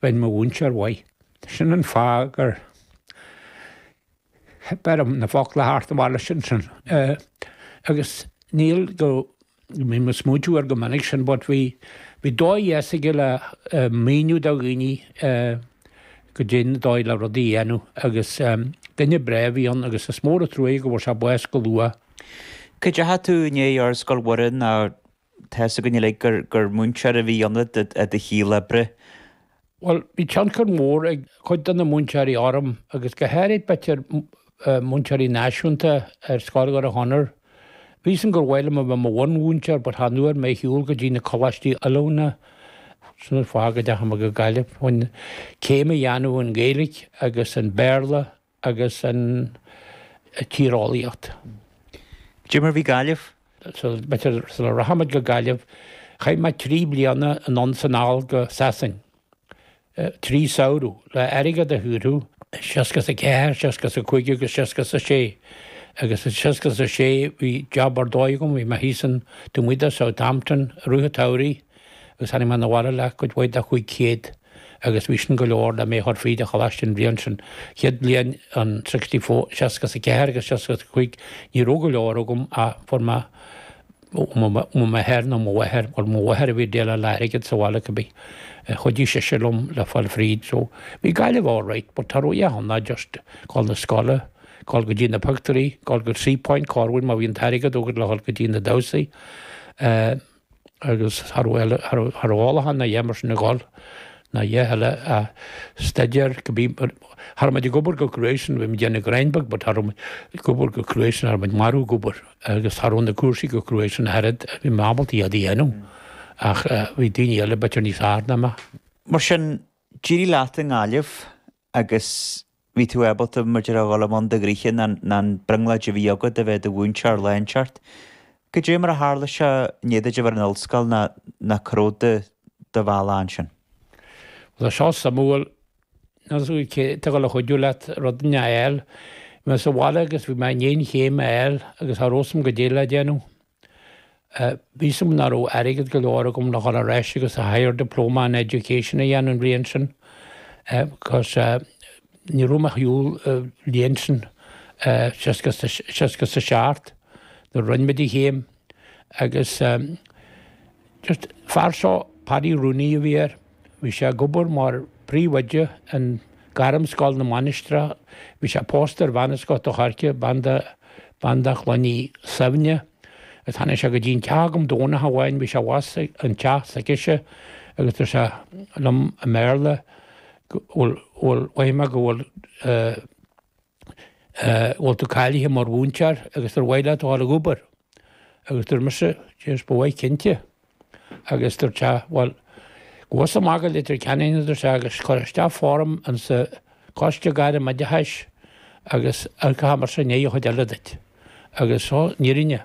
Bhain mo mhúinteoir uaidh. Sin an fáth gur theip orm na focla thart a mhealladh ansin. Agus níl go, bhí mé ag smaoitiú air go minic sin but bhí dóigh dheas aige le míniú do dhaoine goidé an dóigh le rudaí a dhéanamh agus duine breá a bhí ann agus is mór an truaighe go bhfuair sé bás go luath. An dteachaigh tú inné ar Scoil Mhuire ná? Tá's againn uilig gur múinteoir a bhí ionat i do shaol oibre. Bhuel, bhí tionchar mór ag cuid de na múinteoirí orm agus go háirid b'fhéidir múinteoirí náisiúnta ar scoil Dhoire Chonaire. Bhí's agam gur mhaith liom a bheith mo bhunmhúinteoir but chan fhuair mé ar shiúl go dtí na coláistí oiliúna, sin an fáth go dteachaigh mé go Gaillimh, chun céim a dhéanamh in Gaeilge agus in Béarla agus an tíreolaíocht. Goidé mar a bhí Gaillimh? Sula rachaimid go Gaillimh, chaith mé trí bliana anonn 's anall go Sasain, trí samhradh, le airgead a shaothrú, 64, 65 agus 66, agus i 66 bhí job ar dóigh agam, bhí mé thíos in, taobh amuigh de Southampton, i rith an tsamhraidh, agus tháinig mé 'na bhaile le cuid mhaith de chúig chéad agus bhí sin go leor le mé a chur fríd an choláiste an bhliain sin. Chéad bhliain, an sixty four, seasca is a ceathair agus seasca is a cúig, ní raibh go leor agam ach fuair mé ó m'athair, nó mo mháthair, bhuel mo mháthair a bhí ag déileáil le hairgead sa bhaile cibé, chuidigh sise liom le fáil fríd so bhí Gaillimh alright but cha raibh a dhath ann ach just gabháil 'na scoile, gabháil go dtí na pictiúirí, gabháil go Seapoint corruair má bhí an t-airgead agat le dhul go dtí na damhsaí. Eh. agus cha raibh ólachán ná a dhath mar sin ag dul ná a dhath eile ach staidéar. Cha raibh muid ag obair chomh cruaidh sin bhí muid ag déanamh gráinnín beag but cha raibh muid ag obair chomh cruaidh sin cha raibh muid marbh ag obair agus cha raibh na cúrsaí chomh cruaidh sin ach oiread bhí mé ábalta iad a dhéanamh ach bhí daoine eile b'fhéidir níos fearr ná mé. Mar sin, d'éirigh leat i nGaillimh agus bhí tú ábalta mar a déarfá a dhul i mbun do ghnoithe nó an brionglóid a bhí agat a bheith i do mhúinteoir a leanstan. Goidé mar a tharla seo i ndiaidh duit a bheith ar an ollscoil nó nó cá raibh do bhealach ansin? Bhuel, tá seo suimiúil. Níl's agat cé atá ag dul a chuidiú leat rud a fháil. Bhí mé sa bhaile agus bhí mé i ndiaidh an chéim a fháil agus cha raibh's agam goidé le déanamh. Bhí's agam nach raibh airgead go leor agam le dhul ar ais agus an Higher Diploma in Education a dhéanamh an bhliain sin because ní raibh mé ar shiúl an bhliain sin seasca is a seacht nuair a rinne mé an chéim agus An fear seo, Paddy Rooney a bhí air. Bhí sé ag obair mar phríomhoide in Gairmscoil na Mainistreach. Bhí sé pósta ar bhean as Gort an Choirce, bean de, bean de Chloinne Suibhne. Agus tháinig sé go dtí an teach agam Domhnach amháin, bhí sé abhus ag an teach s'aicise, agus dúirt sé liom i mBéarla go bhfuil, bhfuil, mhothaigh mé go bhfuil eh, bhfuil tú cáilithe mar mhúinteoir agus ar mhaith leat a dhul ag obair? Agus dúirt mise, Jeez, ba mhaith cinnte. Agus dúirt sé, bhuel, gabh thusa amach go Leitir Ceanainn, a dúirt sé, agus cuir isteach form insa Coiste Gairm Oideachais agus amharcfaidh mise i ndiaidh an chuid eile duit. Agus so, níor fhan.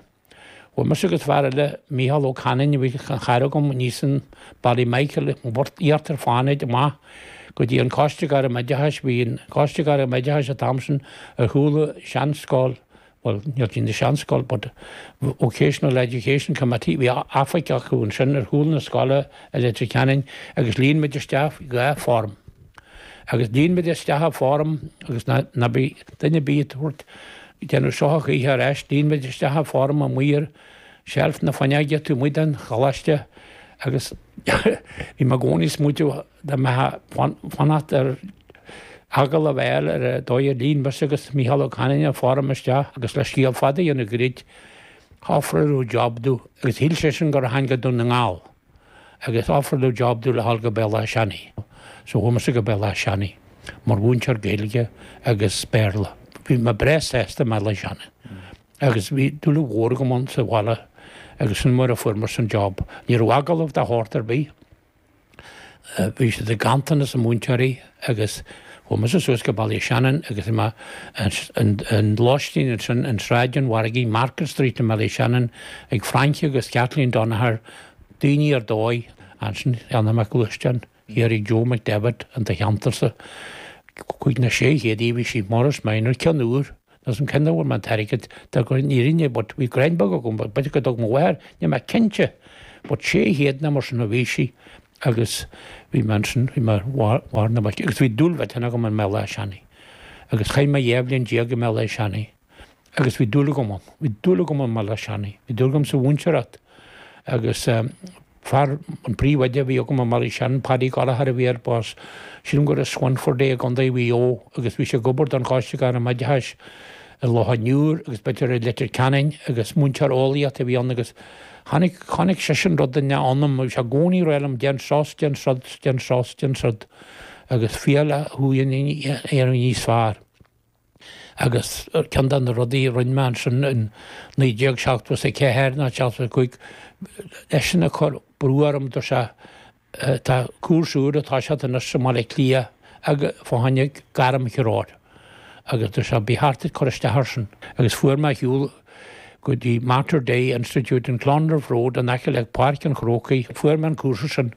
Bhuail mise agus fear eile, Micheál Ó Canainn, a bhí ina chara agam aníos in Ballymichael in Íochtar Fánaid amach go dtí an Coiste Gairm-Oideachais. Bhí an Coiste Gairm-Oideachais an t-am sin ar chúl an seanscoil, bhuel, níl sí ina seanscoil but Vocational Education Committee, bhí oifig acu ansin ar chúl na scoile i Leitir Ceanainn agus líon muid isteach dhá form. Agus líon muid isteach an form agus ná bí duine bí ag tabhairt déanamh shoitheach oíche ar ais líon muid isteach an form amuigh ar sheilf na fuinneoige taobh amuigh den choláiste agus bhí mé i gcónaí ag smaoitiú dá mbeifeá ag fanacht ar agallamh a fháil ar an dóigh ar líon mise agus Micheál Ó Canainn an form isteach agus le scéal fada a dhéanamh goirid ofráladh job dó agus shíl seisean gur tháinig go Dún na nGall. Agus ofráladh job domh le ghabháil go Béal Átha Seanaidh so chuaigh mise go Béal Átha Seanaidh mar mhúinteoir Gaeilge agus Béarla. Bhí mé breá sásta i mBéal Átha Seanaidh agus bhí dúil mhór agam ann sa bhaile agus sin mar a fuair mé an job. Ní raibh agallamh de shórt ar bith. Bhí siad i nganntanas múinteoirí. agus chuaigh mise suas go Ballyshannon agus bhí mé ar lóistín ansin in Sráid an Mhargaidh, Market Street i mBallyshannon, ag Francie agus Kathleen Donagher daoine ar dóigh, ansin cheannaigh mé gluaisteán, thiar ag Joe McDevitt in do cheantarsa, cúig nó sé chéad a bhí sí, Morris Minor, ceann úr, agus cén áit a bhfuair mé an t-airgead tá gur níor inn é but bhí gráinnín beag agam, b'fhéidir go dtug mo mháthair, níl mé cinnte but sé chéad nó mar sin a bhí sí. Agus bhí mé ansin ar mhuin na muice agus bhí dúil mhillteanach agam i mBéal Átha Seanaidh. Agus chaith mé dhá bhliain déag i mBéal Átha Seanaidh agus bhí dúil agam ann. Bhí dúil agam i mBéal Átha Seanaidh. Bhí dúil agam sa mhúinteoireacht agus fear, an príomhoide a bhí agam i mBéal Átha Seanaidh, Paddy Gallagher a bhí air, b'as, sílim gur as Swinford é i gContae Mhaigh Eo agus bhí sé ag obair don Choiste Gairm-Oideachais i Loch an Iúir agus b'fhéidir i Leitir Ceanainn agus múinteoir eolaíochta a bhí ann agus Chonaic, chonaic seisean rud inteacht ionam, bhí sé i gcónaí ag rá liom déan seo is déan siúd, déan seo is déan siúd, agus féacháil le thú féin a dhéanamh níos fearr. Agus ceann de na rudaí a rinne mé ansin in 1974 ná 75, eisean ag cur brú orm, dúirt sé, Tá cúrsa úr ag toiseacht anois i mBaile Átha Cliath fá choinne gairmthreoir agus dúirt sé ba cheart duit cur isteach ar sin agus fuair mé ar shiúl go dtí Mater Dei Institute in Clonliffe Road in aice le Páirc an Chrócaigh fuair mé an cúrsa sin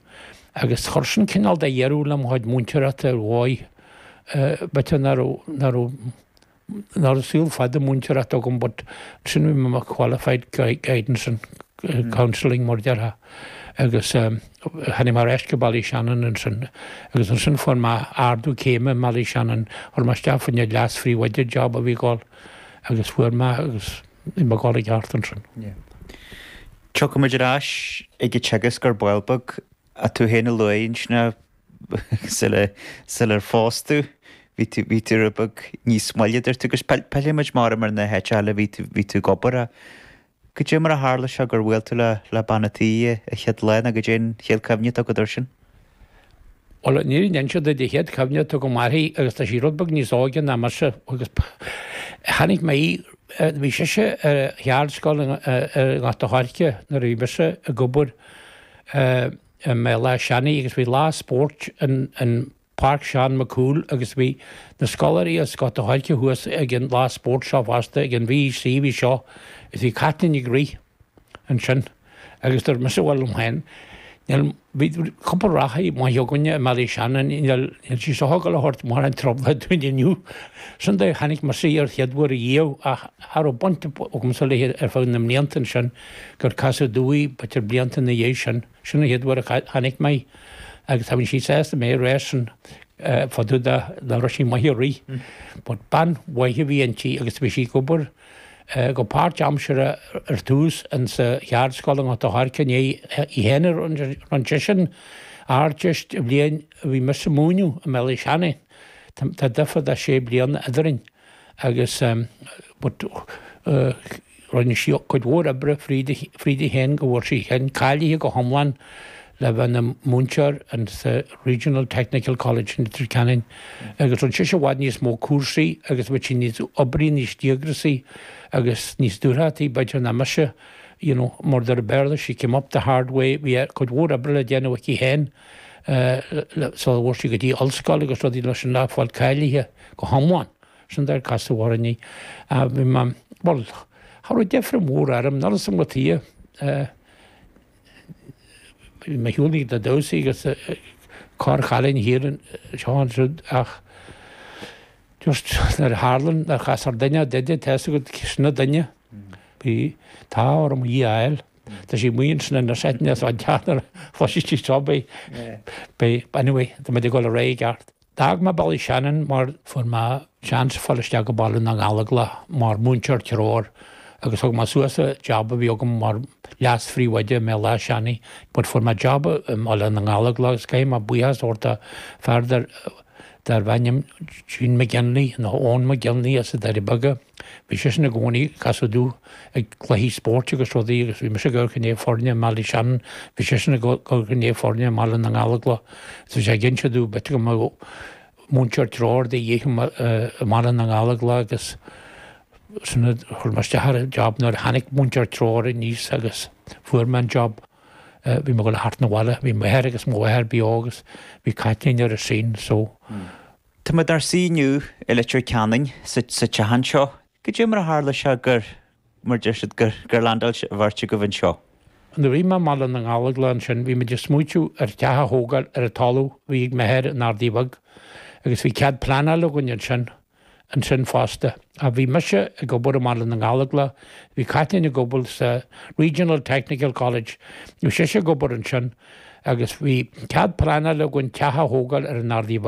agus chuir sin cineál de dheireadh le mo chuid múinteoireachta ar mhaith b'fhéidir nach raibh Nach raibh saol fada múinteoireachta agam but ansin bhí mé mar qualified guidance and counselling mar a déarfá agus tháinig mé ar ais go Ballyshannon ansin agus ansin fuair mé ardú céime i mBallyshannon, chuir mé isteach fá choinne leas-phríomhoide job a bhí ag gabháil agus fuair mé é agus bhí mé ag gabháil i gceart ansin. Tiocfaimid ar ais ag an teagasc ar ball beag. Tú féin a luaigh ansin é. sular phós tú bhí tú rud beag níos moille a dúirt tú agus pillfimid mar a deirim ar na háiteacha eile a bhí tú ag obair a. Goidé mar a tharla seo gur bhuail tú le bean an tí an chéad lá nó goidé an chéad cuimhne atá agat ar sin? Bhuel níor ndein siad idir chéad cuimhne atá agam uirthi agus tá sí rud beag níos óige ná mise agus chonaic mé í bhí sise ar cheardscoil i nGort a' Choirce nuair a bhí mise ag obair i mBéal Átha Seanaidh agus bhí lá spóirt in in Páirc Seán Mac Cumhaill agus bhí na scoláirí as Gort a' Choirce thuas ag an lá spóirt seo fosta ag an V.E.C. bhí seo is bhí Caitlín ag rith ansin agus dúirt mise bhuel liom féin níl bhí cúpla reathaí maith againne i mBéal Átha Seanaidh níl níl sí seo ag gabháil a thabhairt mórán trouble dúinn inniu sin é chonaic mise an chéad uair riamh ach cha raibh baint agamsa léi ar feadh na mblianta ansin gur casadh domh í b'fhéidir blianta ina dhiaidh sin. Sin an chéad uair a chonaic mé í agus cha bhíonn sí sásta mé a rá sin fá dtaobh de an raibh sí maith ag rith. But bean mhaith a bhí inti agus bhí sí ag obair go páirtaimseartha ar tús insa Cheardscoil i nGort a' Choirce i ndiaidh í féin a rinne sise an Ardteist an bhliain a bhí mise ag múineadh i mBéal Átha Seanaidh. Tá difear de sé bliana eadrainn. agus rinne sí cuid mhór oibre fríd í féin go bhfuair sí féin cáilithe go hiomlán le bheith ina múinteoir sa Regional Technical College in Leitir Ceanainn agus rinne sise i bhfad níos mó cúrsaí agus bhí sí níos oibrí, níos díograsaí agus níos dúthrachtaí b'fhéidir ná mise, you know, mar a deir an Béarla, she came up the hard way, bhí cuid mhór oibre le déanamh aici féin sular bhfuair sí go dtí ollscoil agus rudaí mar sin le fáil cáilithe. go hiomlán. Sin deir casadh orainn í. Bhuel, cha raibh deifre mhór orm, nuair is iongat í, bhí mé ag dul chuig na damhsaí agus corrchailín thart anseo is ansiúd ach just nuair a tharla nár chas ar duine de de theas agat sna duine, bhí an t-ádh orm í a fháil. Tá sí amuigh ansin in na seiteanna atá ag teacht nuair a chloisfidh sí seo, beidh, beidh, anyway, tá muid ag dul ar aghaidh i gceart. D'fhág mé Ballyshannon mar fuair mé seans fáil isteach go Baile na nGallóglach mar múinteoir treoir agus thug mé suas an jab a bhí agam mar leas-phríomhoide i mBéal Átha Seanaidh but fuair mé jab i mBaile na nGallóglach agus caithfidh mé buíochas a thabhairt do fear darbh ainm Gene McGinley nó Eoin McGinley as na Doirí Beaga. Bhí seisean i gcónaí ag casadh domh ag cluichí spóirt agus rudaí agus bhí mise ag amharc i ndiaidh foirne i mBallyshannon, bhí seisean ag amharc i ndiaidh foirne i mBaile na nGallóglach so bhí sé ag inse domh b'fhéidir go mbeadh múinteoir treoir de dhíth i mBaile na nGallóglach agus ansin chuir mé isteach ar an job. Nuair a tháinig múinteoir treoir aníos agus fuair mé an job bhí mé ag dul thart 'na bhaile, bhí m'athair agus mo mháthair beo agus bhí Caitlín ar an scene so Tá muid inár suí inniu i Leitir Ceanainn sa teach anseo. Goidé mar a tharla seo gur, mar a deir siad, gur, gur landáil an bheirt agaibh anseo. Nuair a bhí mé i mBaile na nGallóglach ansin bhí muid ag smaoitiú ar theach a thógáil ar an talamh a bhí ag m'athair in Ardaidh Bheag agus bhí cead pleanáil againn ansin, ansin fosta. Ach bhí mise ag obair i mBaile na nGallóglach, bhí Caitlín ag obair sa Regional Technical College, bhí sise ag obair ansin agus bhí cead pleanáil againn teach a thógáil ar an Ardaidh Bheag.